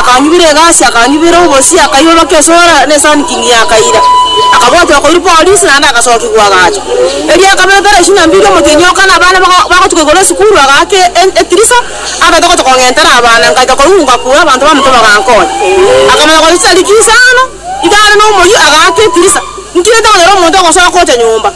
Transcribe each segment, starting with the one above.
Akanyubera egasi, akanyubera obosie, akairorokia esoera ne sankingi, akaira. Akabwatwa koirwa polisi naende agasokigwa agacha. Erio akabekera isiko na mbiri omotienyi o kane abana baka- bagotuka igoro esukuru, agaaka e- e- etirisa, agaeta gocha kong'entera abana. Ngacha korunga kure, abanto bamonto bagankonya. Akamanya gochia rikia isano, iga are nomoyio, agaaka etirisa. Ntinyete konyora omonto ogosoka gocha nyomba.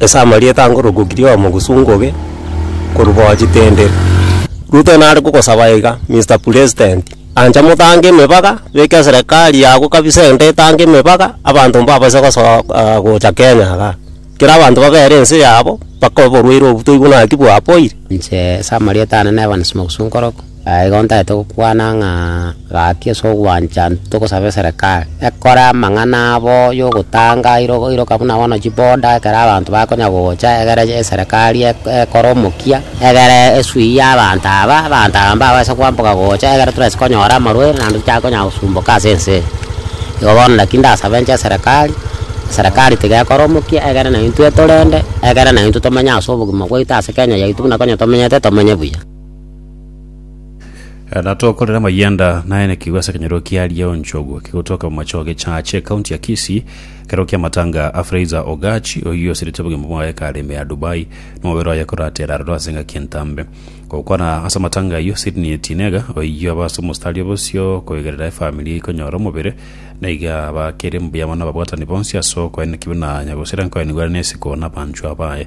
Ase amarieta ango rogokiri oyomo gosungoge korubao chitendere. Ruto nare gogosaba iga, Mister Pulesdenti, ancha motange emebaga, beka eserekari yago kabisa ende etange emebaga, abanto mbabase gosoa aa gocha Kenya igaa. Kera abanto babere ense yabo, baka oborwaire obo toigwe naki bwapoire. Inche ase amarieta ane Evans Mogusu Nkoroko. Aya igo ntagete gokwana ng'a gaki ase ogwancha togosaba eserekari ekore amang'ana abo yogotanga iro iroka buna bono chiboda ekero abanto bakonya gocha egere eserekari eko ekore omokia egere esuiye abanto aba, abanto aba mbabaise kwamboka gocha egere torase konyora amarwaire naende tochake konya gosumboka ase ense eye. Igo bono naki ndasabe inche eserekari, eserekari tiga ekore omokia egere na intwe etorende egere na intwe tomenye ase obogima bwaito ase Kenya yaito buna konya tomenyete tomenye buya. Eh, na tokorera mayanda naye na kigwa ase kenyero kia Lioncho ogwo kigotoka mu macho age chache county ya Kisii kero kia matanga a Fraser Ogachi oyo osirite obogima bwaye kareme ya Dubai no mobere oye koratera aroro ase ngaki entambe gokwana ase matanga ayo Sydney Tinega oyo abase omostari obosio koegerera efamili ikonyora omobere na iga bakere mbuya mono ababwatani bonsi ase okoenekibwa na nyagosera nkoenigwera nesiko na abanchwa baye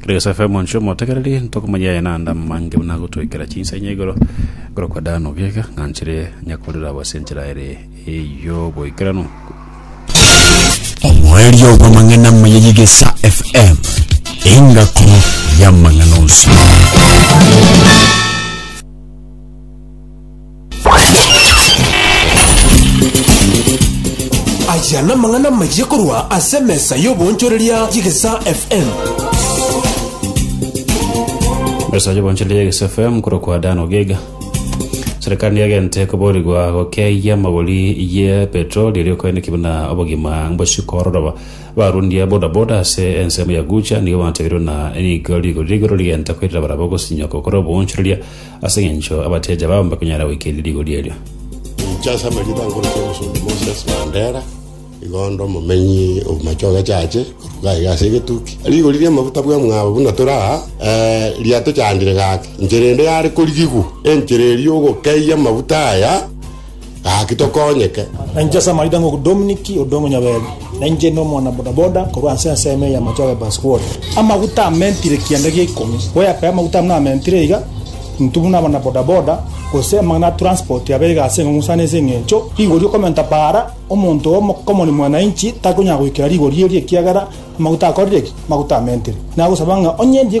Kera gese FM onsi omotegereri ntokomanya yaye nanda mange buna gotwekera chinsa inya igoro igoro kwa dano gega ng'anchire nyakorera abo ase enchera ere eyoboikeranu omoerio bw'amang'ana moyeyigesa FM engako y'amang'ana onsi. Aya namang'ana amayia korwa ase emesa y'oboonchoreria y'Egesaa FM. Mesa y'oboonchoreria y'Egesaa FM korokwa Dan Ogega. Serikali niagente koborigwa gokeyia magori ye petroli erio koeneki buna obogima mbosiko ororoba. Barundia bodaboda ase ensemo ya Gucha nigo batebiru na nigo rigori rigoro rigenta koirira barabwo gosinyoko kore oboonchoreria Ase engencho abatiochi abao mbakonyara goikeria rigori erio. Inche ase amarita nkorokire omosomba Moses Mandera, igo onde omomenyi o machoge chache, korwa gaiga ase egetuki. Rigori ri'amaguta bw'emwabo buna tore aa, eh, riatochandire gake. Inchera ende yare korigigwa, enchera eria ogokeyia amaguta aya, Gaki tokonyeke. Na inche ase amaida ng'oku Dominic Odong'u Nyaberi, na inche inde omwana bodaboda korwa ase ensemo eye ya Machoge Bus World. Amaguta amentire kianda gia ikomi, goyakaya amaguta buna amentire iga, intwe buna abana bodaboda, gose amang'ana a transport abe iga ase eng'ong'o sana ase eng'encho rigori okomenta paara, omonto oo omokomori mwananchi takonyara goikera rigori erio ekiagera amaguta akorire ki? Amaguta amentire. Nagosaba ng'a onye ndiye.